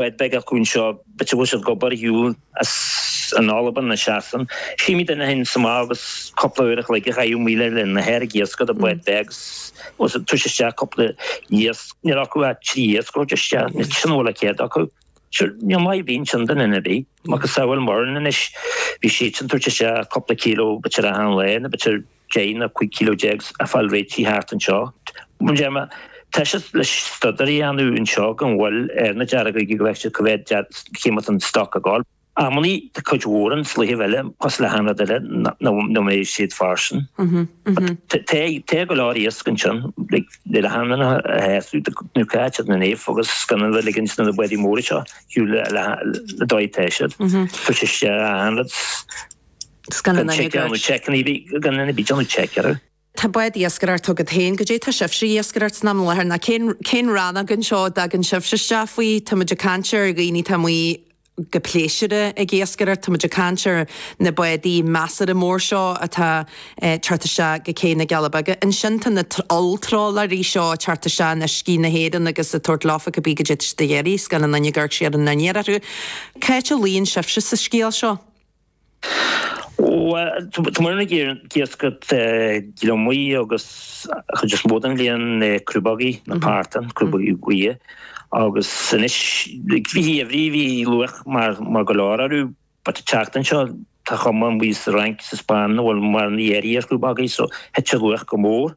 Bád beag acu anseo. B'fhéidir go bhfuil siad ag obair ar shiúl san Albain nó Sasain. Chímíd duine éigin sa mbeár agus cúpla uair a chloig a chaitheamh amuigh ar linn a haer ag iascach i mbád beag agus ag tabhairt isteach cúpla iasc. Níl acu ach trí iasc a thabhairt isteach. Sin a bhfuil de chead acu. Sure, níl maith ar bith ansin do dhuine ar bith. Macasamhail muidinne anois, bhí siadsan ag tabhairt isteach cúpla kilo b'fhéidir achan lá nó b'fhéidir. Deich nó 15 kilo a fháil réitithe thart anseo. Bun téarma, Tá siad le staidéar a dhéanamh anseo gan mhoill ar na deargóga go bhfeice siad cad é mar atá an stoc ag gabháil. Amannaí tá cuid mhór an slighe eile cosúil le haon rud eile nach mbeidh siad fairsing. Tá go leor iasc ansin le do hanlanna a fheabhsú nó caithfear a dhéanamh agus gan a bheith ag ligint do na bádaí móra seo ar shiúl le goidé atá siad. Tá sé sé ann. Tá bád iascaire agat féin. Goidé tá sibhse ag iascaireacht ins an am i láthair nó cén rannóg anseo a dtagann sibhse isteach faoi? Tá muid ag caint ar dhaoine atá amuigh go pléisiúrtha ag iascaireacht. Tá muid ag caint ar na bádaí measartha mór seo atá ag teacht isteach go cé na gCealla Beaga. Ansin tá na holltrálaerí seo ag teacht isteach in uiscí na hÉireann agus ag tabhairt leofa cibé goidé atá siad ag iarraidh scoil an Fhine Guaird siar in An Iarthar. C'áit a luíonn sibhse sa scéal seo? Bhuel, tá muidinne ag iascaireacht gliomaigh agus an chuid is mó den bhliain na crúbógaí, na partáin, crúbógaí buí. Agus anois, i rith an gheimhridh, bhí luach maith go leor orthu. But ag teacht anseo, tá cuma amuigh sa Fhrainc, sa Spáinn, nach bhfuil mórán éilimh ar chrúbógaí, so thit an luach go mór.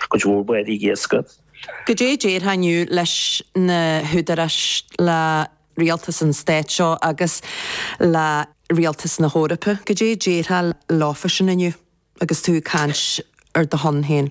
Tá cuid mhór bádaí iascaigh. Goidé déarfá inniu leis na húdaráis, le rialtas an stáit seo agus le rialtas na hEorpa, goidé déarfá leofasan inniu agus tú ag caint ar do shon féin?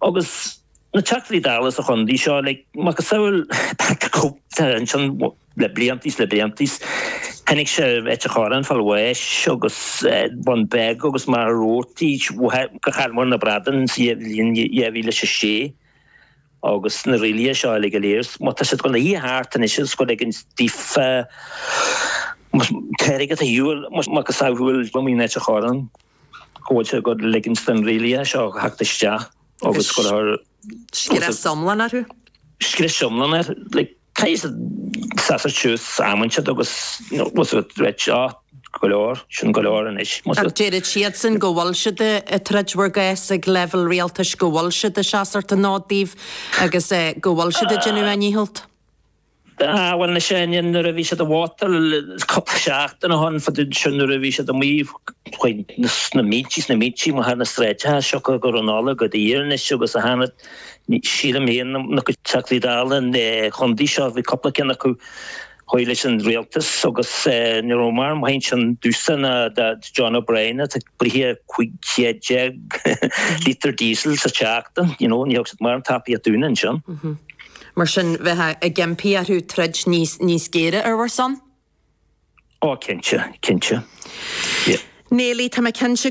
Agus na Teachtaí Dála sa chondae seo le macasamhail ansin le blianta is le blianta is chonaic siad Ailt an Chorráin ag fáil bháis agus Bun Beag agus Machaire Rabhartaigh ó chaill muid na bradáin sa bhliain 2006. Agus na rialacha seo uilig go léir má tá siad ag gabháil a shuí thart anois is ag ligean daofa tarraingt ar shiúl macasamhail Cumann Ailt an Chorráin. go bhfuil siad ag ligint do na rialacha seo theacht isteach agus go raibh. scrios iomlán orthu. scrios iomlán air. Caithfidh siad seasamh suas am inteacht agus a ráit seo go leor sin go leor anois. Ach deirid siadsan go bhfuil siad ag troid bhur gcás ag leibhéal rialtais, go bhfuil siad ag seasamh ar an fhód daoibh agus go bhfuil siad ag déanamh a ndícheallt. Ah, bhuel, na sean-ninn, nuair a bhí siad i bhfótail, is cúpla seachtain ó shoin, fadó ansin, nuair a bhí siad amuigh faoi sna mílte, na mílte, amuigh ar na sráideacha, siocair gur an Nollaig a thart anois agus a thána, sílim fhéin, ár gcuid Teachtaí Dála an Chontae seo, bhí cúpla ceann acu thaobh leis an Rialtas agus ní raibh maith ar bith ansin domhsa ná do John O'Brien atá ag bruith cúig chéad déag lítear diesel sa tseachtain, you know, ní thug siad mórán tacaíocht dúinn ansin. Mar sin, bheifeá ag impí orthu troid níos géire ar bhur son? Ó, cinnte, cinnte. Neilí, Tá mé cinnte go.